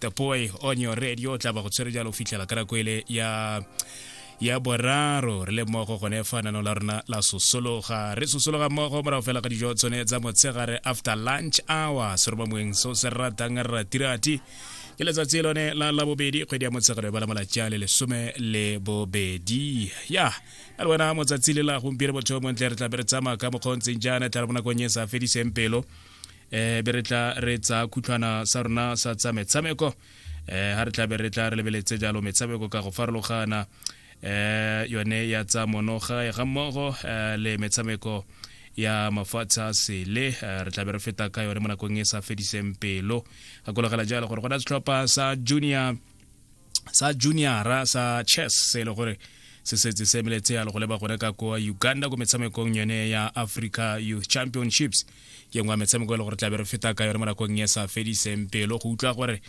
the boy on your radio o tla ba go tshwere jalo o fitlhela ka nako ele ya ya boraro re le mmogo gone fa nano la rona la sosologa re sosologa mmogo morago fela ga dijo tsone tsa motshegare after lunch hour se roba moeng so se ratang ratirati ke letsatsi lone la labobedi kgwedi ya motshegare ba la malatsi a le lesome le bobedi ya a le wena motsatsi le la gompieno botho montle re tlabe re tsamaya ka mokgontseng jaana tla re bonakong e sa fediseng pelo eh be re tla re tsa khutlhwana sa rona sa tsa metshameko eh ha re tla be re tla re lebeletse jalo metshameko ka go farologana eh yone ya tsa monoga ya ga mmogo eh, le metshameko ya mafatshe a sele eh, re tla be re feta ka yone mo nakong e sa fediseng pelo gakologela jalo gore go na setlhopha sa junior sa juniora sa chess se e le gore se setse se emeletse ya le go leba gone ka kwa uganda ko metshamekong yone ya africa youth championships ke ngwa metshameko e le gore tlabe re feta ka yone mo nakong e sa fediseng pelo go utlwa gore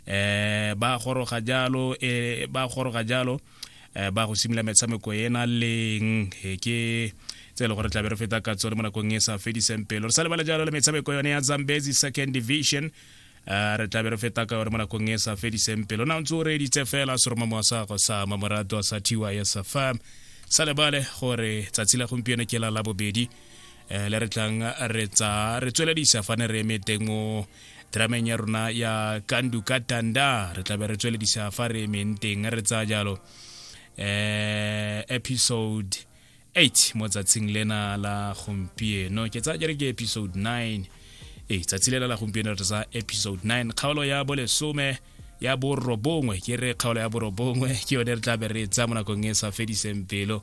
um ba goroga jalo e ba goroga jalo um ba go simolola metshameko ena leng ke tse e le gore tlabe re feta ka tsone mo nakong e sa fediseng pelo re sa lebale jalo le metshameko yone ya zambezi second division Eh, re tlabe re feta ka yone mo nakong e sa fediseng pelo na ntse o reeditse fela seromamo wa sago sa mamorato a sa thiwa ya sa fa sa lebale gore tsatsi la gompieno ke la labobedi um le re tlang re tsa re tsweledisa fa ne re eme teng mo drameng ya rona ya kandu ka tanda re tlabe re tsweledisa fa re emeng teng re tsaya jalo um episode 8 mo tsatsing lena la gompieno ke tsaya jere ke episode 9 ee tsatsi lela la gompieno re tsa episode 9 kgaolo ya bolesome ya borobongwe ke re kgaolo ya borobongwe ke yone re tla be re tsa mo nakong e sa fediseng pelo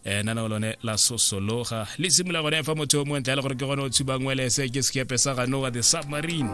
eh nana lone la sosologa le simula gone fa motho o montle le gore ke gone o tshubang welese ke sekepe sa ganoa the submarine